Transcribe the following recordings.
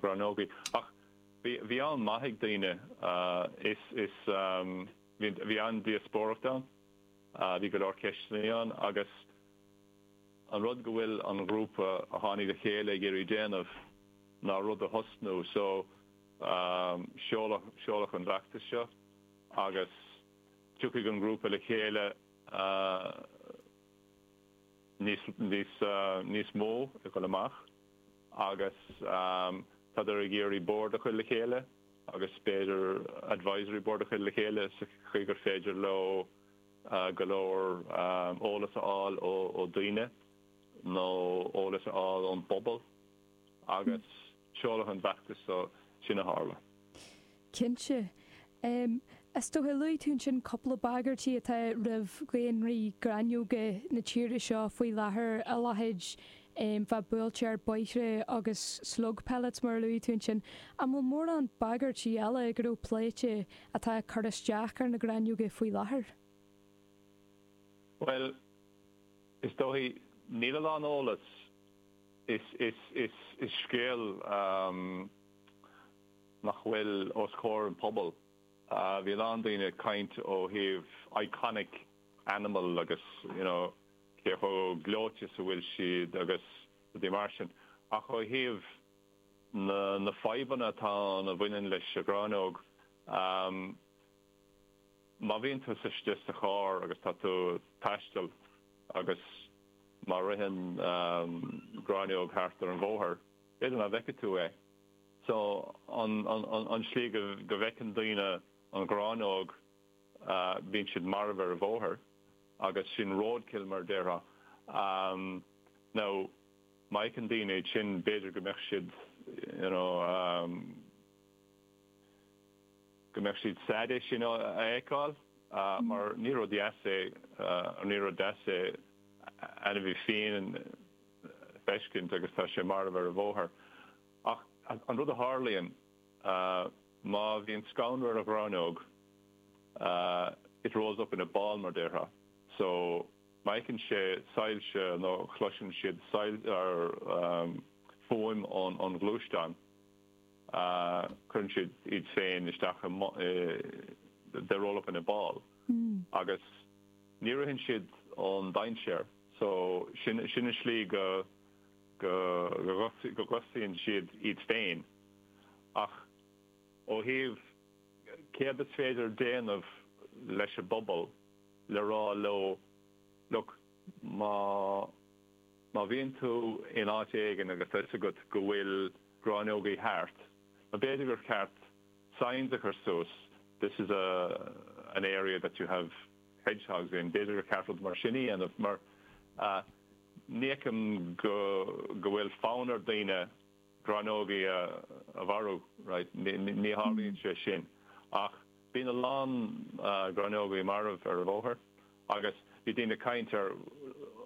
rannógaí. Ach bhí, bhí am maith ag daoine. Is, is bhí, bhí an-díospóireacht ann. Bhí go leor ceisteannaí ann agus an rud go bhfuil an ghrúpa a tháinig le chéile ag iarraidh déanamh ná rud a thosnú. So seoladh, seoladh an fheachtas seo agus tiocfaidh an grúpa le chéile níos, níos, níos mó ag dul amach. agus tádar ag iarraidh bord a chur le chéile agus b'fhéidir advisory board a chur le chéile sa chaoi gur féidir leo go leor eolas a fháil ó daoine nó eolas a fháil ón bpobal agus seoladh an fheachtais so sin a a tharla. Cinnte. Is dócha, luaigh tú ansin cúpla bagairtí atá roimh dhaonraí gráinneoga na tíre seo faoi láthair, a leithéid bheith buailte ar bóithre agus slug pellets mar a luaigh tú ansin. An bhfuil mórán bagairtí eile go raibh pléite atá ag cur isteach ar na gráinneoga faoi láthair? Bhuel, is dóigh, níl a lán eolas, is scéal nach bhfuil os comhair an pobal. Bhí a lán daoine ag caint ó thaobh iconic animal agus you know cé chomh gleoite is a bhfuil siad agus rudaí mar sin ach ó thaobh na na fadhbanna atá ann a bhaineann leis an ghráinneog ehm má bhíonn tusa istigh sa charr agus tá tú ag taisteal agus má ritheann ehm gráinneog thart ar an bhóthar b'fhéidir nach bhfeicfidh tú é. So an tslí go bhfeiceann daoine an ghráinneog bíonn siad marbh ar an bhóthar agus sin roadkill mar a déarfá. Now má fheiceann daoine iad sin b'fhéidir go mbeadh siad you know go mbeadh siad sad é sin a fheiceáil mar ní rud dheas é ní rud deas é ainmhí fiáin feiscint agus tá sé marbh ar an bhóthar. Ach an rud a tharlaíonn, má bhíonn scannradh ar an ghráinneog, it rolls up in a ball mar a déarfá. So, má fheiceann sé soilse nó chloiseann siad fuaim ón ghluaisteán, cuireann siad iad féin isteach i, they roll up in a ball. Agus ní ritheann siad ón dainséar. So, sin, sin an slí go, go, go gcosnaíonn siad iad féin. Ach ó thaobh céard is féidir déanamh leis an bpobal le rá leo, look, má, má bhíonn tú in áit éigin agus tá 'fhios agat go bhfuil gráinneogaí thart, b'fhéidir gur cheart signs a chur suas, this is a, an area that you have, hedgehogs in. B'fhéidir gur ceart rud mar sin a dhéanamh mar ní fheicim go bhfuil fonn ar daoine gráinneogaí a mharú, right? Ní tharlaíonn sé sin ach bíonn a lán gráinneogaí marbh ar an bhóthar agus bhí daoine ag caint ar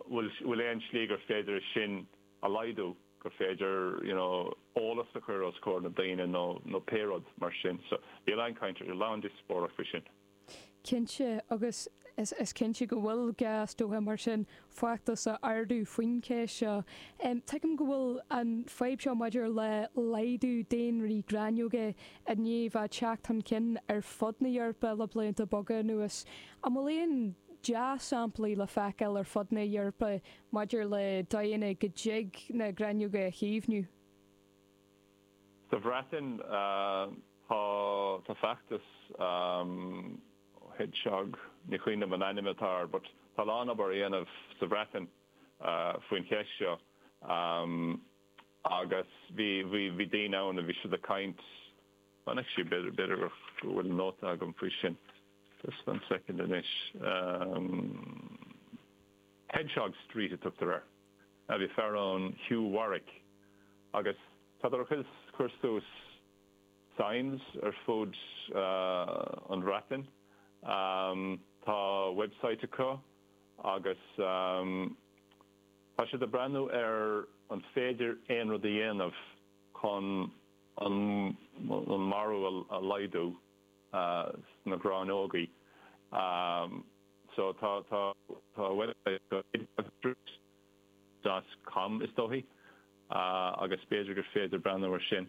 bhfuil aon slí gur féidir é sin a laghdú, gur féidir you know eolas a chur os comhair na daoine nó pé rud mar sin. So bhí a lán caint ar, a lán díospóireacht faoi sin. Cinnte, agus is cinnte go bhfuil gá, is dócha, mar sin feachtas a ardú faoin cheist seo. Tuigim go bhfuil an fhadhb seo maidir le laghdú daonraí gráinneoige i ndiaidh a theacht chun cinn ar fud na hEorpa le blianta beaga anuas. An bhfuil aon dea-samplaí le feiceáil ar fud na hEorpa maidir le dóigheanna go dtig na gráinneoga a chaomhnú? Sa Bhreatain tá tá feachtas Hedgehog, ní chuimhním an ainm atá air but tá a lán obair á dhéanamh sa Bhreatain faoin cheist seo agus bhí bhí bhí daoine ann a bhí siad ag caint, chonaic sí b'fhéidir b'fhéidir gur go bhfuil nóta agam faoi sin just one second anois, Hedgehog Street a tugtar air. a bhí fear ann Hugh Warwick agus tá siad tar éis cur suas signs ar fud an Bhreatain tá website acu agus tá siad ag breathnú ar an féidir aon rud a dhéanamh chun an marú a laghdú. na gráinneogaí so tá tá tá bhuel tá droichid dath cam is dócha agus b'fhéidir gur féidir breathnú ar sin